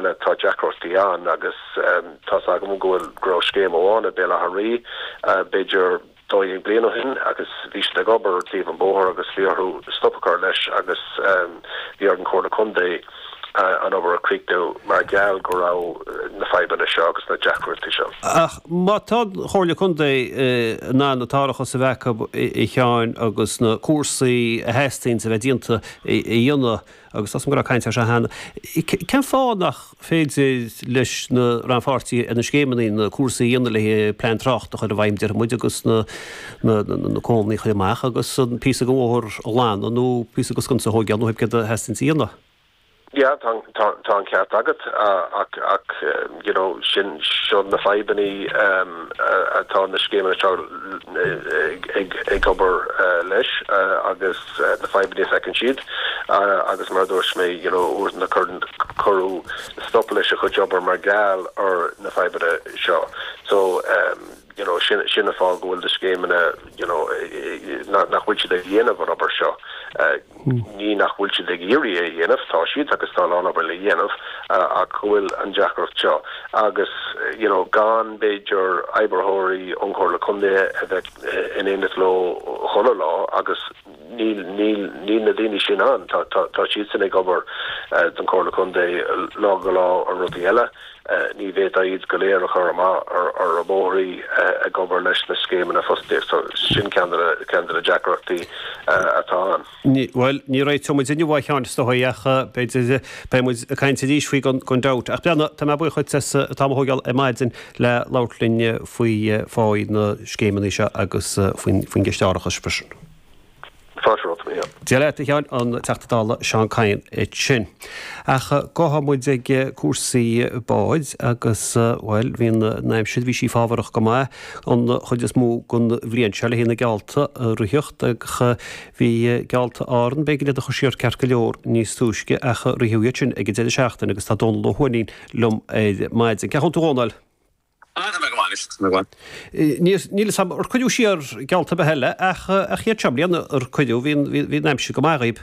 Tá deacrachtaí ann agus tá's agam go bhfuil, go raibh scéim amháin i Béal Átha Rí b'fhéidir dó dhéag bliain ó shin agus bhí siad ag obair ar thaobh an bóthar agus bhí orthu stop a chur leis agus bhí ar an Chomhairle Contae an obair a chríochnú mar gheall go raibh na fadhbanna seo agus na deacrachtaí seo. Ach má tá an Chomhairle Contae in ann an t-árachas a bheith acu a Sheáin agus na cúrsaí a theastaíonns a bheith déanta a dhéanamh, agus tá's a'm go raibh caint ar seo cheana, cén fáth nach féidir leis na rannpháirtithe ar na scéimeanna na cúrsaí a dhéanamh le plean tráchta a chur i bhfeidhm, déarfaidh muid, agus na comharthaí a chur amach agus an píosa den bhóthar a ghlanadh nó píosa den sconsa a thógáil nó pé ar bith céard a theastaíonn a dhéanamh? Yeah, tá an, tá, tá an ceart agat, ach, ach, you know, sin, seo na fadhbanna um, atá na scéimeanna seo ag, ag, ag obair leis agus. na fadhbanna a feiceann siad agus mar a dúirt mé you know uaireanta cuireadh stop leis an gcuid obair mar gheall ar na fadhbanna seo so you know sin sin an fáth go bhfuil na scéimeanna you know nach nach bhfuil siad ag déanamh an obair seo ní nach bhfuil siad ag iarraidh é a dhéanamh tá siad agus tá a lán obair le déanamh ach go bhfuil an deacracht seo agus you know go mb'fhéidir oibritheoirí ón gComhairle Contae a bheith in éineacht leo chuile lá agus níl na daoine sin ann. Tá siadsan ag obair don Chomhairle Contae lá go lá ar rudaí eile. Ní bhféadfá iad go léir a chur amach ar na bóithrí ag obair leis na scéimeanna fostaíochta. Sin ceann de na deacrachtaí atá ann. Bhuel, ní réiteoidh muid inniu, a Sheáin, is dóigh, ach b'fhéidir beidh muid ag caint arís faoi gan dabht. Ach a mh'anam tá mé buíoch duit as an t-am a thógáil ar maidin le labhairt linn faoi na scéimeanna seo agus faoin gceist árachais freisin. Tá sé romhat, a Sheáin. Dia leat, a Sheáin, an Teachta Dála Seán Kyne ansin. Ach gabhfaidh muid ag cúrsaí bád agus, bhuel, bhí an aimsir, bhí sí fábharach go maith. an chuid is mó den bhliain seo le haghaidh na geallta a ritheachtáil ach bhí geallta Árann, b'éigean iad a chur siar ceart go leor níos túisce ach ritheadh iad sin ag an deireadh seachtaine agus tá Dónal Ó hUaithnín liom ar maidin. Cén chaoi a bhfuil tú a Dhónail? Tá mé go maith a Mháirín. Níl fhios agam ar cuireadh siar geallta ar bith eile ach iad seo i mbliana ar cuireadh, bhí an aimsir go maith dhaoib.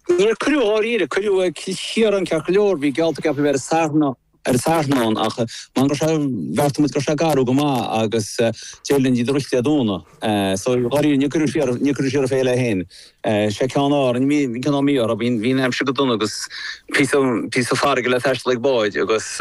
Níor cuireadh dháiríre, cuireadh siar Cill Chiaráin ceart go leor, bhí geallta ceaptha a bheith ar an Satharn ann ach mar go raibh sé, bheartaigh muid go raibh sé garbh go maith agus d'éirigh linn iad a ritheacht Dé Domhnaigh. So dháiríre níor cuireadh siar, níor cuireadh siar an fhéile féin. Sé ceann Árainn, bhí an ceann mí orthu, bhí an aimsir go dona agus píosa, píosa farraige le taisteal ag báid agus.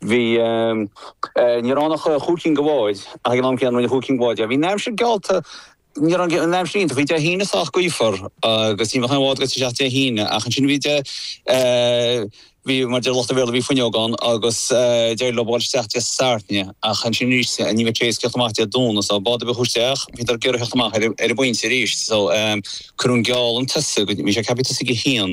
Bhí Níor fhan ach chúig cinn de bháid ach ag an am céanna rinne chúig cinn go bhfóid. Bhí an aimsir geallta Níor fhan an aimsir iontach. Bhí Dé hAoine sách gaofar agus ní bheadh aon bhád ag dul isteach Dé hAoine ach ansin bhí Bhí mar a deir lucht an Bhéarla bhí fuinneog ann agus d'éirigh leo dhul isteach Dé Sathairn ach ansin arís ní bheadh aon tíocht amach Dé Domhnaigh so bád ar bith a chuaigh isteach bhíodar ag iarraidh theacht amach ar an bpointe arís so cuireadh an geall chun tosaigh bhí sé ceaptha tosaí ag a haon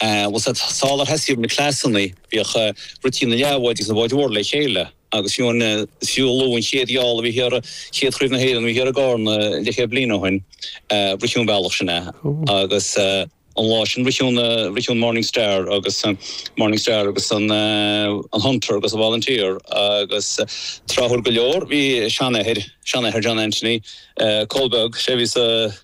Bhuel, sular thosaigh na clasanna, bhíodh rití na leathbháid agus na báid mhór le chéile agus fiú an siollabadh, an chéad gheall a bhí thiar, chéad chraobh na hÉireann a bhí thiar i gCarna leathchéad bliain ó shoin, ritheadh an bealach sin é agus an lá sin ritheadh an Morning Star agus Morning Star agus an Hunter agus an Volunteer agus tráthúil go leor bhí seanathair, seanathair John Anthony, Cóil Beag, sé a bhí sa.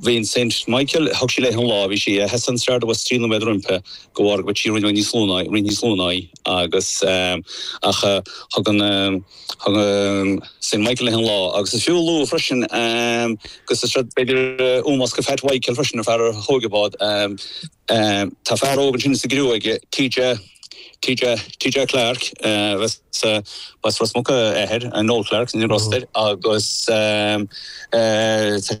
Bhí an St Michael, thug sí léi an lá, bhí sí a sheasamh an Star abhus trí nóiméad roimpi de bharr go bhfuil sí roinnt níos lú ná, roinnt níos lú ná í agus ach thug an, thug an St Michael léi an lá agus is fiú a lua freisin go sa Star b'fhéidir Eoin Bhosca Phat Mhichael freisin an fear a thóg an bád, tá fear óg ansin sa gcriú aige, TJ, TJ, TJ Clarke agus b'as Ros Muc a athair, Noel Clarke, sin an rostr agus tá.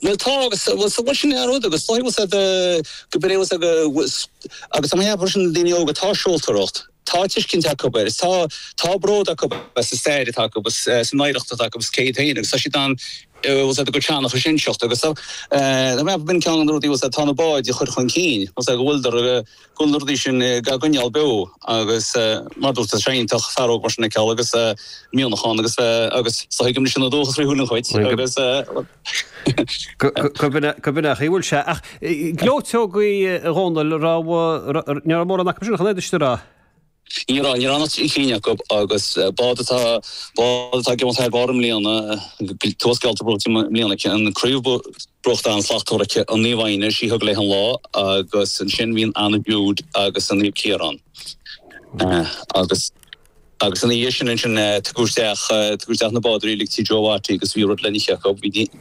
Bhuel tá agus bhuel so bhuel sin é an rud agus is dóigh liom gurb in é agus agus tá mé ag ceapadh freisin le daoine óga tá seoltóireacht tá tuiscint acu agus tá tá bród acu as an stair atá acu agus as an oidhreacht atá acu agus cé hiad féin agus tá siad in ann bhuel go teannach sin a inseacht agus tá mé ag ceapadh gurb in ceann de na rudaí atá na báid a chur chun cinn go bhfuileadar go bhfuil na rudaí sin dhá gcoinneáil beo agus mar dúirt tú tá sé iontach fear óg mar sin a fheiceáil agus mianach ann agus agus so tuigim leis sin an dóchas faoi shúil an chuid agus go bhfuil go bhfuil nach bhfuil sé ach gleoiteogaí a Dhónaill nach raibh mórán acu sin chunéidirrá Ní raibh, níor fhan ach trí cinn acu agus bád atá ag imeacht thar barr i mbliana, tá geallta buaite i mbliana aici, an craobh buaite an-slachtmhar aici an Naomh Áine, sí a thug léi an lá agus ansin bhí an Anna Jude agus an Naomh Ciarán agus agus ina dhiaidh sin ansin tugadh isteach na bádóirí uilig tí Joe Watty agus bhí rud le n-ithe acu.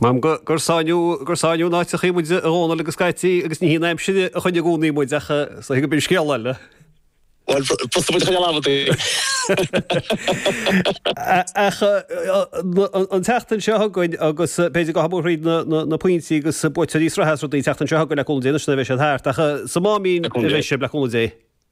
Maím go gur sáinníodh, gur sáinníodh in áit eicínt muid, a Dhónaill agus Caití, agus ní hí an aimsir a choinnigh i gcónaí muid, ach is dóigh gurb in scéal eile. Bhuel, thosaigh muid a choinneáil amhad air. Ach an tseachtain seo chugainn, agus b'fhéidir go ngabhfaidh muid thríd na pointí agus buaiteoirí na sraithe is rudaí an tseachtain seo chugainn, le cúnamh Dé anois, nuair a bheidh siad thart, ach sa Máimín a bheidh sibh, le cúnamh Dé.